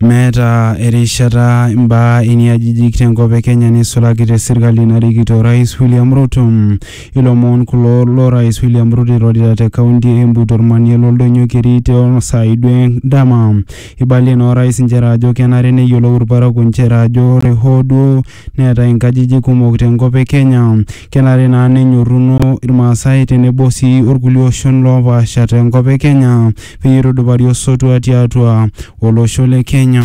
Meeta erishata imbaa iniajijik tenkop e Kenya neisulaki te serkali narikito Orais William Ruto. Ilomon kulo lo Rais William Ruto eirorita te kaunti e Embu tormanie l'oldonyo keri too saai duo endama. Eibalie naa Orais nchere ajo kenare neyiolou ilparakuo nchere ajo ore hoo duo neetae inkajijik kumok te nkop e Kenya. Kenare naa nenyorruno Ilmaasai tenebo sii olkulie oshon loopaasha te nkop e Kenya peyie eitudupari osotua tiatua olosho le Kenya.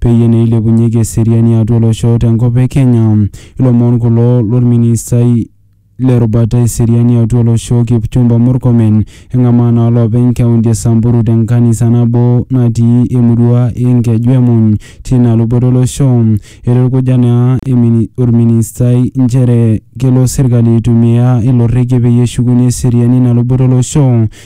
peyie naa eilepunyeki eseriani atua olosho te nkop e Kenya. Ilomon kulo lolministai le rubata e seriani atua olosho Kipchumba Murkomen eng'amaa naa loopeny kaunti e Samburu te nkanisa nabo natii emurua e Nkeju e Muny tina luboto olosho. Eitukuja naa olministai nchere kelo serkali aitumia ilo rrekie peyie eshukunye eseriani ina luboto olosho.